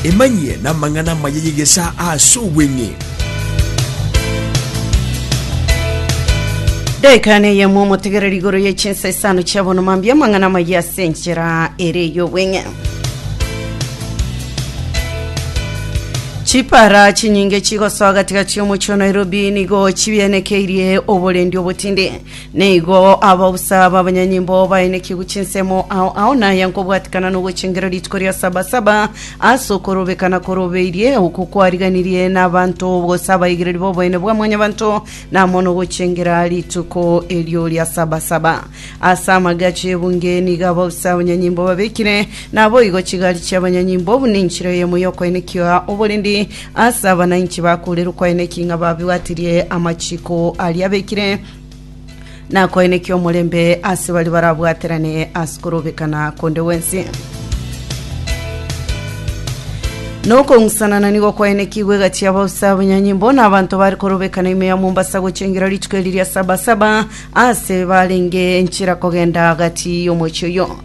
Emanyie namang'ana amaya y'egesaa aase obweng'e. Daika neyemo omotegereri igoro ye chinsa isano chia bono mambia amang'ana amaya ase enchera ere ey'obweng'e. Chipara chinyinge chigosoa gati gati omochie o Nairobi nigo chibienekeirie oborendi obotindi. Nigo aba bosa b'abanyanyimbo baenekigwe chinsemo ao ao naya nkobwatikana nogochengera rituko ria Saba-saba ase okorobeka na korobeirie, oko kwariganirie n'abanto gose abaigereri b'oboene bwa Mwanyabanto, na amo nogochengera rituko erio ria Saba-saba. Ase amagacho y'ebunge nigo aba bosa abanyanyimbo babekire, naboigo chigari chi'abanyanyimbo buna enchera eyemo y'okoenekia oborendi ase abanainchi bakoorire okoenekia ng'a babwatirie amachiko aria abekire, Nakoenekia omorembe ase baria barabwaterane ase korobekana konde gwensi. Nokong'usanana nigo kwaenekigwe egati y'abausa abanyanyimbo na abanto bari korobekana ime ya Mombasa gochengera rituko eri ria Sabasaba ase barenge enchera kogenda gati y'omochie oyo.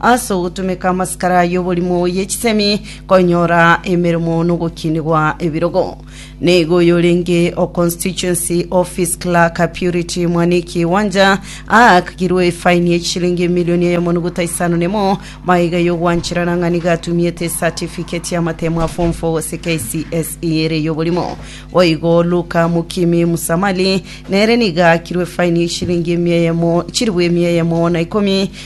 Ase ogotumeka amasikara y'oborimo ye chisemi, konyora emeremo nogokinigwa ebirogo. Nigo oyorenge o Constituency Office Clerk Purity Mwaniki Wanja aakigirwe efaini ye chishilingi emilioni eyemo nuguta isano nemo magega y'ogwancherana ng'a nigo atumiete esatifigeti y'amatemo a Form 4 gose KCSE ere y'oborimo. Boigo Luka Mukimi Musamali nere nigo aakirwe efaini ye chishilingi emia eyemo chilifu emia eyemo na ikomi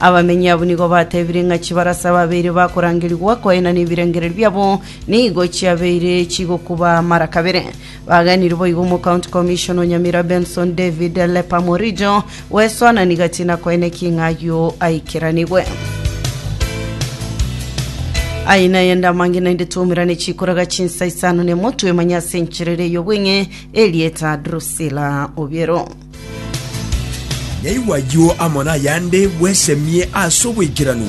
Abamenyi abwo nigo batebire ng'a chibarasa babeire bakorangerigwa koina nebirengererio biabo nigo chiabeire chigokuba mara kabere. Bagenire boigo Omocounty Commissioner o Nyamira Benson David Lepa Morijo gwesoanani gati na koina eking'a ayio aikeranigwe. Aye naye ndamange naende twaumerane chikoraga chinsa isano nemo twemanye ase encherere ey'obweng'e Elieta Drusilla Obiero. Naigwe ayio amo nayande bwesemie ase oboikeranu.